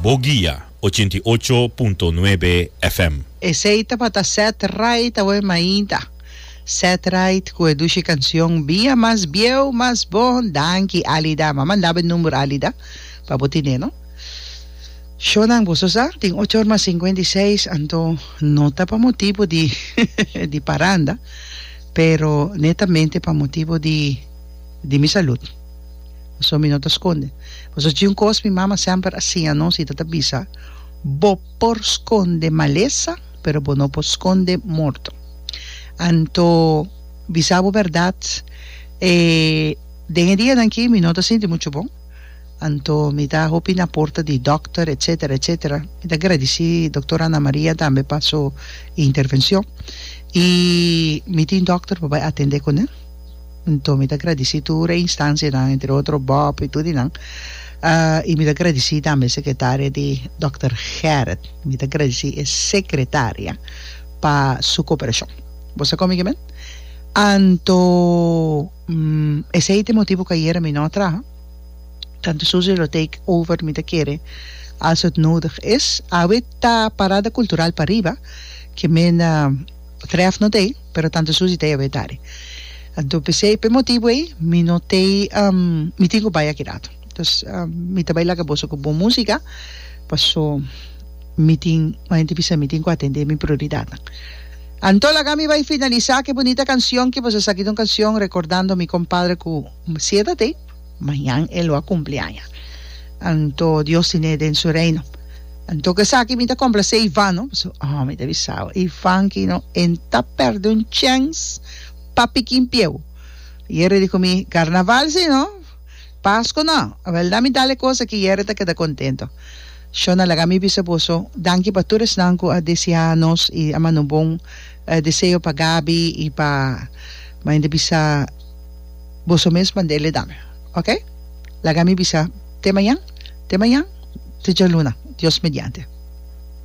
Bo guia, ochenta i ocho punto nuebe FM. Esey tabata Set Right awe mainta. Set Right cu e dushi cancion Bia mas bieu mas bon Danki Alida ma mandabe e number Alida pa bo tine no Shownan boso sa tin ocho or mas cincuenta y seis anto no ta pa motibo di di paranda pero netamente pa motibo di di mi salud. Pasobra mi no ta skonde. Pasobra tin un kos mi mama semper a siña nos i ta ta bisa, Bo por skonde malesa, pero bo no por skonde morto. Anto, bisa bo bèrdat, e den e dianan akí mi no ta sinti muchu bon, anto mi ta hopi na porta di dòkter, etsetera, etsetera. Mi ta gradisí doktor Ana Maria tambe pa su intervenshon. I mi tin dòkter pa bai atendé kuné. Anto mi ta gradisí tur e instansianan, entre otro Bob i tur di nan. I mi ta gradisí tambe e sekretaria di dòkter Gerrit. Mi ta gradisí e sekretaria pa su koperashon. Bo sa kon mi kimen? Anto esei ta e motibu ku ayera mi no a traha. Tante Susie lo take over mi ta kere als het nodig is. Awe ta parada kultural pariba, kimen trèf no ta ei. pero tantu Susie ta yab'é tari. Anto p'esei, p'e motibu ei, mi no t'ei, mi tin ku bai akidat. Antos, mi ta bai laga boso ku bon músika, paso mi tin, ku henter bisa mi, tin ku atendé mi prioridatnan. Anto laga mi bai finalisá ku e bunita kansion ku boso sa aki ta un kansion rekordando mi kompadre ku sieda t'ei. Mañan e lo a cumpli aña. Anto Dios tin'é den su Reino. Anto cu esaki mi ta complacé Ivan, no? Pasobra, oh, mi ta bisa bo, Ivan aki no en ta perdé un chèns pa piki un pieu. Yere di cu mi, Carnaval si no, Pascu no. A bèlda mi dal e cos aki, yere ta keda contento. Shona, laga mi bisa boso, danki pa tur esnan cu a deseá nos i a manda un bon deseo pa Gabi i pa, mañan ta bisa, Boso mes manda el e dame. Ok. Laga mi bisa te mañan, te mañan, te djaluna, Dios mediante.